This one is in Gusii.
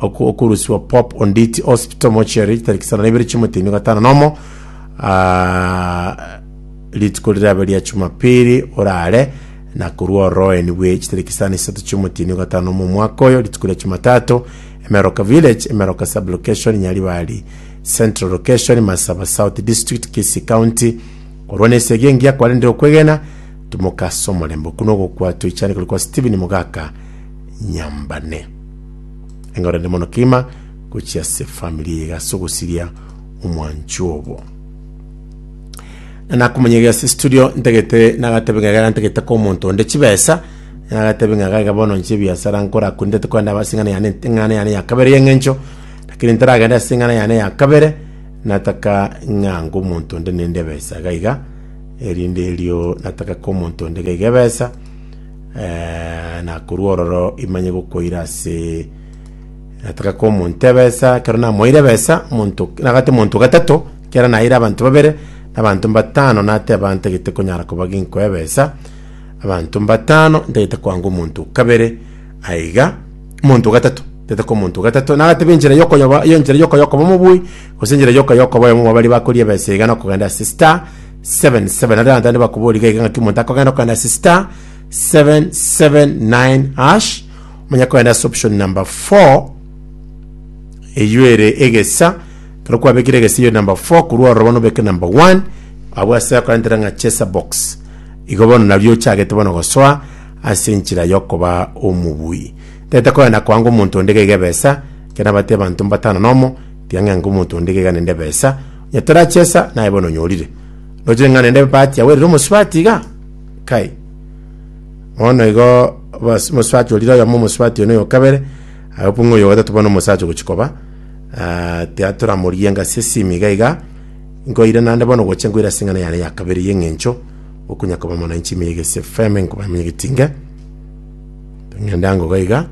oku- okurusiwa pop onditi hospital mochiari tariki sana naibere chimotemi gatano nomo ah, rituko rirabe ria chumapili orare na korwa oroeni bwe chitariki sana isato chimotini gatano nomo omwaka oyo rituko ria chumatato emeroka village emeroka sub location nyaribari central location masaba south district kisi county korwa na esegi engiya kwarendire okwegena tumokasa omorembe okuno ogokwa toichane kori kwa stephen mogaka nyambane Enga orende mono kegima gochia ase family iga ase ogosiria omwancho obo. Nakomonyeria ase studio ntagete nagatebe ng'a iga ntagete ko omonto onde chibesa nagatebe ng'a iga bono nche ebiasara nkora korende tokogenda aba ase eng'ana yane eng'ana yane ya kabere y'eng'encho lakini ntaragende ase eng'ana yane ya kabere nataka ng'a nko omonto onde nende ebesa iga iga erinde erio nataka ko omonto onde iga iga ebesa Eh, na korwa ororo imanye gokoira ase nataka ko omonto ebesa kero namoire ebesa omonto nagate monto gatato kera naire abanto babere na abanto mbatano nateba ntagete konyara koba ginkoa ebesa abanto mbatano ntagete koanga omonto o kabere aiga omonto o gatato ntagete koa omonto o gatato nagateba enchera ya okoyoba ya enchera ya okoyokoba omobui gose enchera ya okoyokoba oyomo mwa baria bakoria ebesa iga na okogenda ase star. 77 nario abanto bande bakoboria gaiga ng'aki omonto akogenda okanda ase star 779 hash omanya kogenda ase option number 4 eywo ere egesa ekero kwabekire egesa eywo number 4 korwa ororo bono obeke number 1 abwo ase akorentera ng'a chesa box igo bono nario ochagete bono gosoa ase enchera yokoba omobui tagete kogenda koanga omonto onde gaiga ebesa ekero nabatebia abanto mbatano na omo Tiga ng'a nkomonto onde gega nende ebesa, onye torachesa, naye bono onyorire. Nochire ng'a nende ebati yagwerire omosubati iga? Kai. Bono igo obas- omosubati orire oyomo, omosubati one oyokabere, agapwa ng'a oyogotato bono omosacha ogochi koba. Ah, tiga toramorigie ng'a ase esimi iga iga, nkoire naende bono gocha nkoire ase eng'ana yane ya kabere y'eng'encho, okonya koba mwananchi ime ya egesi efeme nkoba ime ya egetinge. Ng'ende ango iga iga.